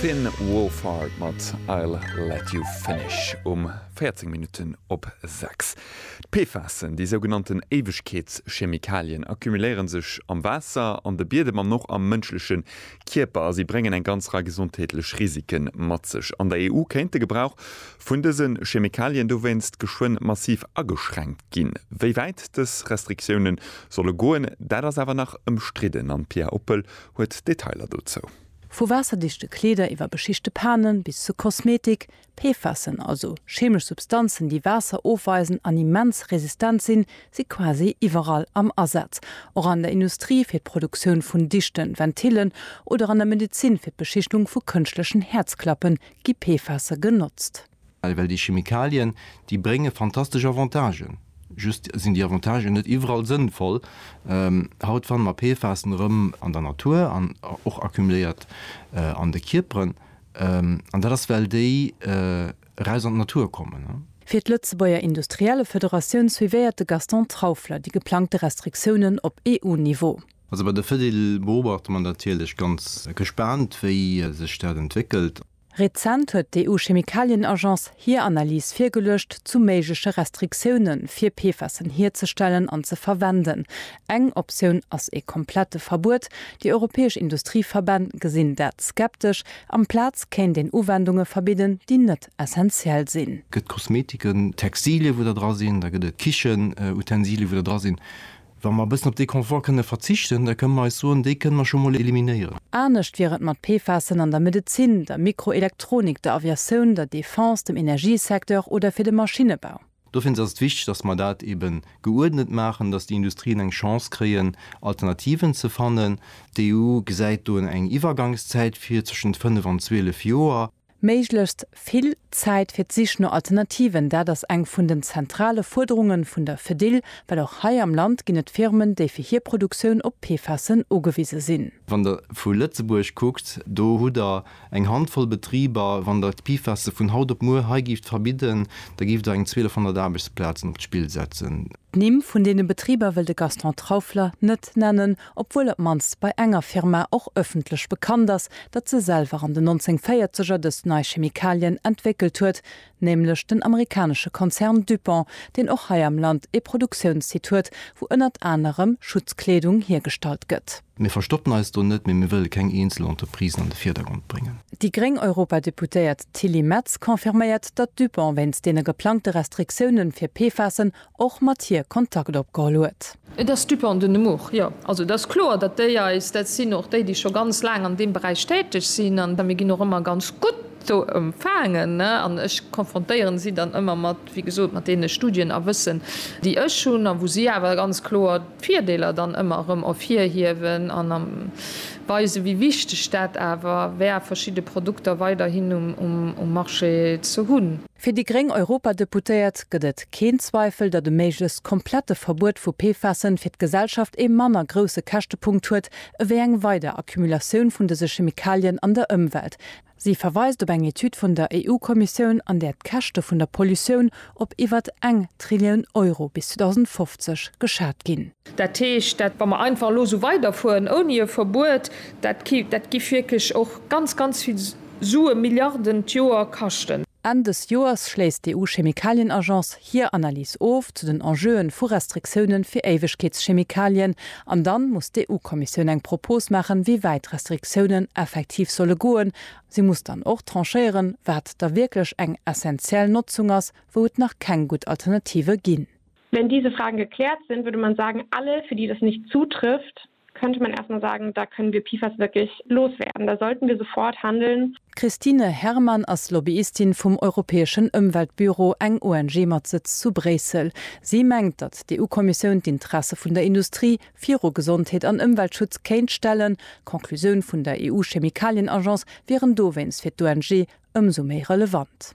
Finn Wolfhard mat I'll Let You Finish um 14 Minutten op 6. D'PFASen, déi sougenannten Éiwegkeetschemikalien, accumuléiere sech am Waasser, an de Biedem an och am mënschleche Kierper a si bréngen eng ganz Rei gesondheetlech Risike mat sech. An der EU kéint de Gebrauch vun dëse Chemikalien dowéinst geschwënn massiv ageschränkt ginn. Wéi wäit dës Restriktioune solle goen, dat ass awer nach ëmstridden an d'Pia Oppel huet Detailer dozou. Vu waasserdichte Kleeder iwwer beschichte Panen bis zu Kosmetik, PFASen, also cheemesch Substanzen, déi Waasser ofweisen an immens resistent sinn, si quasi iwwerall am Asaz. Och an der Industrie fir d'Produktioun vun dichten Ventillen oder an der Medezin fir d'Beschichtung vu kënschtlechen Häerzklappe gi PFASe genotzt. Well well déi Chemikalien, déi brénge fantastesch Avantagen, just sinn déi Avantagen net iwwerall sënnvoll. Haut fanne mer PFASen erëm an der Natur an och accumuléiert an de Kierperen. An dat ass well déi eraus an d'Natur kommen. Fir d'Lëtzebuerger Industriellefederatioun suivéiert de Gaston Trauffler déi geplangte Restriktiounen op EU-Niveau. Also bei der Fedil beobachte mer natierlech ganz gespaant, wéi sech dat entwéckelt. Rezent huet d'EU-Chemikalien-Agence hir Analys virgeluecht zu méigleche Restriktioune fir PFASen hierzestellen an ze verwenden. Eng Optioun ass ee komplette Verbuet. Déi europäesch Industrieverbänn gesinn dat skeptesch. Amplaz kéint een Uwendunge verbidden, déi net essentiell sinn. Gëtt Kosmetiken, Textilien, wou der dra sinn, da gëtt et Kichenutensilien, wou der dra sinn, Wa mer e bëssen op dee Confort kënne verzichten, da kënne mer eis soen, dee kënne mer scho mol eliminéieren. Anescht wier et mat PFASen an der Medezin, der Mikroelektronik, der Aviatioun, der Defense, dem Energiesecteur oder fir de Maschinnebau. Do fir ons ass et wichteg, dass mer dat ebe geuerdnet maachen, dass déi Industrien eng Chance kréien, Alternativen ze fannen. D'EU gesäit do eng Iwwergangszäit vir, zwëschent fënnef an zwielef Joer. Méiglechst vill Zäit fir d'Sich no Alternativen, dat ass eng vun den zentrale Fuerderunge vun der Fedil, well och hei am Land ginn et Firmen, déi fir hir Produktioun op PFASen ugewise sinn. Wann Der vu Lëtzebuerg kuckt, do hutt Der eng Handvoll Betriber. Wann Der d'PFASe vun haut op muer hei gift verbidden, da giff Der eng 1200 Aarbechtsplazen op d'Spill setzen. D'Nimm vun deene Betriber wëll de Gaston Traufler net nennen, obwuel op mannst bei enger Firma och ëffentlech bekannt ass, datt se selwer an den 1940er dës nei Chemikalien entwéckelt huet, nämlech den amerikanesche Konzern DuPont, deen och hei am Land ee Produktiounssite huet, wou ënnert anerem Schutzkleedung hiergestallt gëtt. Mir verstoppen eis do net, mee mir wëlle keng eenzel Entreprisen an de Virdergrond bréngen. Déi gréng Europadeputéiert Tilly Metz confirméiert, datt DuPont wéinst deene geplangte Restriktiounen fir PFASen och mat hir Kontakt opgeholl huet. Et ass Dupont de Nemours, jo. Also et ass kloer, datt déi eis, dat sinn och déi, déi scho ganz laang an deem Beräich täteg sinn, an mir ginn och ëmmer ganz gutt do empfaangen, an ech konfrontéieren si dann ëmmer mat, wéi gesot, mat deene Studien a Wëssen, déi ech hunn, a wou si awer ganz kloer d'Virdeeler dann ëmmer erëm ervirhiewen an weisen, wéi wichteg dat awer wär, verschidde Produkter weiderhin um Marché ze hunn. Fir déi gréng Europadeputéiert gëtt et keen Zweifel, datt e méiglechst komplette Verbuet vu PFASen fir d'Gesellschaft ee manner grousse Käschtepunkt huet ewéi eng weider Accumulatioun vun dëse Chemikalien an der Ëmwelt. Si verweist op eng Etüd vun der EU-Kommissioun, an där d'Käschte vun der Pollutioun op iwwert eng Trillioun Euro bis 2050 geschat ginn. Dat heescht, dat, wa mer einfach elo esou weiderfueren ouni e Verbuet, dat ki, dat giff wierklech och ganz, ganz vill Sue, Milliarden d'Joer kaschten. Enn dës Joers schléisst d'EU-Chemikalienagence hir Analys of zu den Enjeuen vu Restriktioune fir Éiwegkeetschemikalien an dann muss d'EU-Kommissioun eng Propos maachen, wéi wäit d'Restriktiounen effektiv solle goen. Si muss dann och tranchéieren, wat da wierklech eng essenziell Notzung ass, wou et nach keng gutt Alternative ginn. Wenn diese Fragen geklärt sind, würde man sagen, alle, für die das nicht zutrifft, könnte man erst mal sagen, da können wir PFAS wirklich loswerden, da sollten wir sofort handeln. D'Christine Herrmann ass Lobbyistin vum Europäeschen Ëmweltbüro, eng ONG mat Sëtz zu Bréissel. Si mengt, datt d'EU-Kommissioun d'Interesse vun der Industrie viru Gesondheet an Ëmweltschutz kéint stellen. D'Conclusioun vun der EU-Chemikalien-Agence wieren dowéinst fir d'ONG ëmsou méi relevant.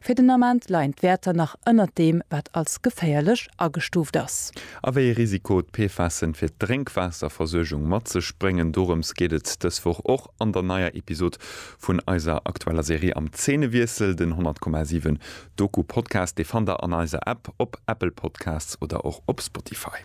Fir den Ament leien d'Wäerter nach ënnert deem, wat als geféierlech agestuuft ass. A wéi ee Risiko d'PFASen fir d'Drénkwaasserversuergung mat sech bréngen, dorëms geet et dës Woch och an der neier Episod vun eiser aktueller Serie Am Zeenewiessel, den 100,7 Doku-Podcast. Dee fannt der an eiser App, op Apple Podcasts oder och op Spotify.